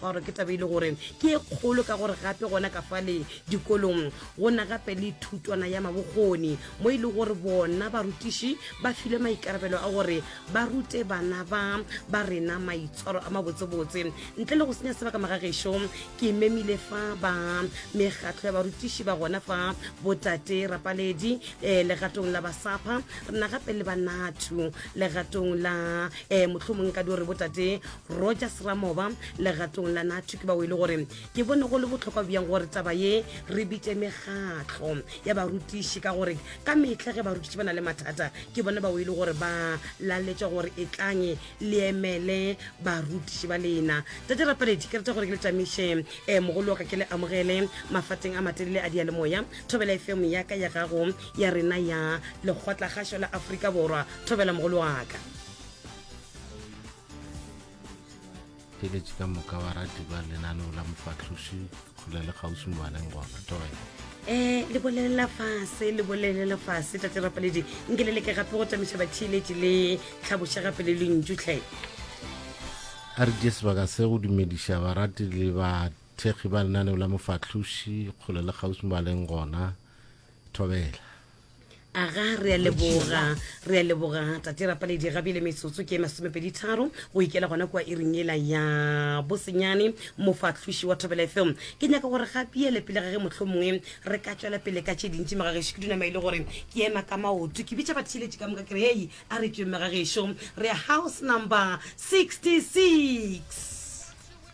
Or ke taba e le gore ke e kgolo ka gore gape gona ka fale dikolong go na gape le thutwana ya mabokgoni mo e le gore bona barutiši ba filwe maikarabelo a gore ba rute bana ba ba rena maitshwaro a mabotsebotse. Ntle le go senya sebaka magagešo, ke memile fa ba mekgatlo ya barutiši ba gona fa, Botate Rapaledi eh, legatong la Basapha, re na gape le ba Nathu legatong la eh, mohlomong nka di gore Botate Rogers Ramoba legatong la Natu ke bao e le gore ke bone go le bohlokwa bjang gore taba ye re bitše megatlo ya barutiši ka gore ka metlha ge barutiši ba na le mathata ke bone bao e le gore ba laletša gore e tlange le emele barutiši ba lena tate rapaledi ke rata gore ke le tšamiše um eh, mogolo wa ka ke le amogele mafateng a matelele a dialemoya thobela efemo ya ka ya gago ya rena ya lekgotlakgašo la aforika borwa thobela mogolo wa ka theeletše ka moka wa rati ba lenaneo la mofahloši kgole le kgauswi mobaneng goba matogela um le bolelela fase le bolelela fase tate rapaledi nke le leke gape go tamiša batheeletši le tlhaboša gape le lentšutlhe a re die sebaka se go dumediša barati le bathekgi ba lenaneo la mofahloši kgole le kgauswi mobaneng gona thobela aga re a leboga re a leboga tate rapaledi ga bile metsotso ke masomepedi tharo go ikela gona kua iring ela ya bosenyane mofahloši wa thobela fm ke nyaka gore ga biele pele ga ge motlho mongwe re ka tswela pele ka tše dintši megagešo ke dunama e le gore ke ema ka maoto ke bitša batheeletši ka moka ke re hei a re tsweng megagešo re house number 66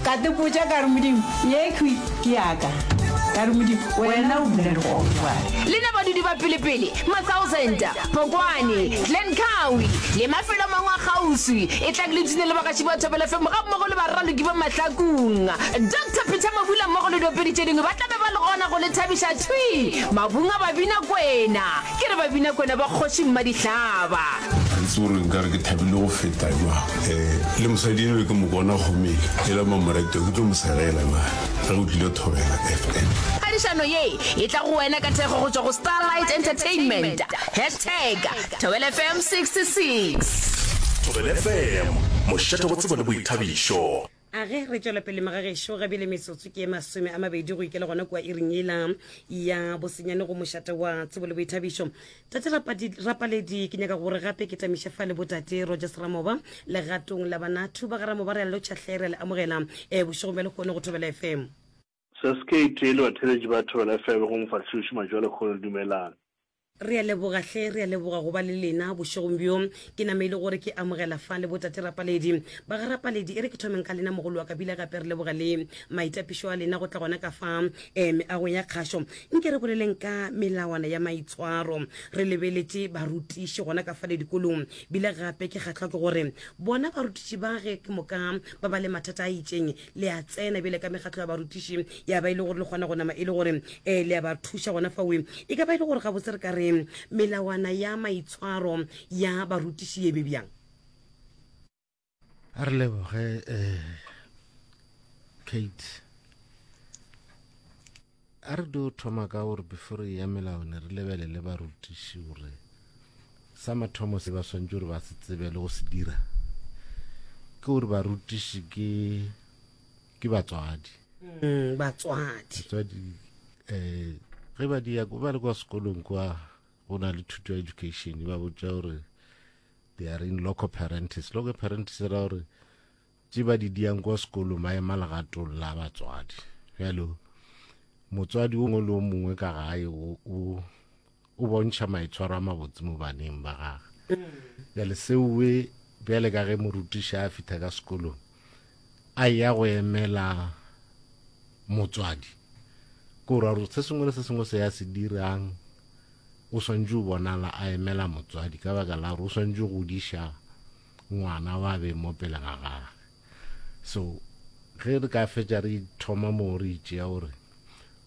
Ka tepotša ka re, Modimo, yekhwi ke ya ka. Ka re, Modimo, wena o bula dikgogo jwale. Le na badudi ba pelepele, Matsauzenta, Phokwane, Glen Cowie, le mafelo a mangwe a kgauswi, etlang le tune le bagaši ba Thobela FM gammogo le baraloki ba Mahlakung. Doctor Peter Mabula mmogo le diopedi tše dingwe ba tla be ba le gona go le thabiša thwi mabung a Babinakwena. Ke re Babinakwena ba Kgoši Mmadihlaba. Ga itse gore nka re ke thabile go feta jwang. E, le mosadi enwe ke mo bona gomele. E la Mamoreto ke tlo mo segela na ge o tlile Thobela FM. Phadišano ye e tla go wena ka thekgo go tšwa go Starlight Entertainment. Hashtag Thobela FM 66. Thobela FM, mošate go tsebo le boithabišo. A ge re tšwela pele, magagešo, ga bjale metsotso ke ye masome a mabedi go ikela gona kua iring yela ya bosenyane go mošate wa tsebo le boithabišo. Tate Rapadi, Rapaledi, ke nyaka gore gape ke tamiše fa le Botate Rogers Ramoba legatong la Banatu. Ba ga Ramoba re a le lotšha hle, re a le amogela eh, bošegong bja lehono go Thobela FM. Sasc e tee le batheeletši ba Thobela FM go mofahloši Matšoalekgolo Dumelang. Re a leboga hle, re a leboga go ba le lena bošegong bjo. Ke nameile gore ke amogela fa le botate Rapaledi. Ba ga Rapaledi, e re ke thomeng ka lena mogolo wa Kabila gape re leboga le maitapišo a lena go tla gona ka fa eh meagong ya kgašo. Nke re boleleng ka melawana ya maitshwaro. Re lebeletše barutiši gona ka fale dikolong. Bile gape ke kgahlwa ke gore bona barutiši ba ge ke moka ba ba le mathata a itšeng, le a tsena bjale ka mekgatlo ya barutiši ya ba e le gore le kgona go nama e le gore um le ya ba thuša gona fawe e ka ba e le gore gabotse re ka re melawana ya maitshwaro ya barutiši ye be bjang a re leboge um kate A re dio thoma ka gore before re eya melaone re lebelele barutiši gore sa mathomo se ba swantše gore ba se tsebe le go se dira ke gore barutiši ke ke batswadi mm, batswadi batswadi eh ge ba di ya ba le kwa sekolong kwa go na le thuto ya education ba botša gore they are in local parentis local parentis ra gore tše ba di diang kwa sekolong ba ema legatong la batswadi bjale motswadi o mongwe le o mongwe ka gae o bontšha maitshwaro a mabotse mo baneng ba gage bjale seoe bjale ka ge morutiša a fitha ka sekolong a ya go emela motswadi ko ra gore se sengwe le se sengwe se ya se dirang o swantse o bonala a emela motswadi ka baka la gore o swantse go diša ngwana wa beng mo pele ga gage so ge re ka fetša re thoma mo re itšea gore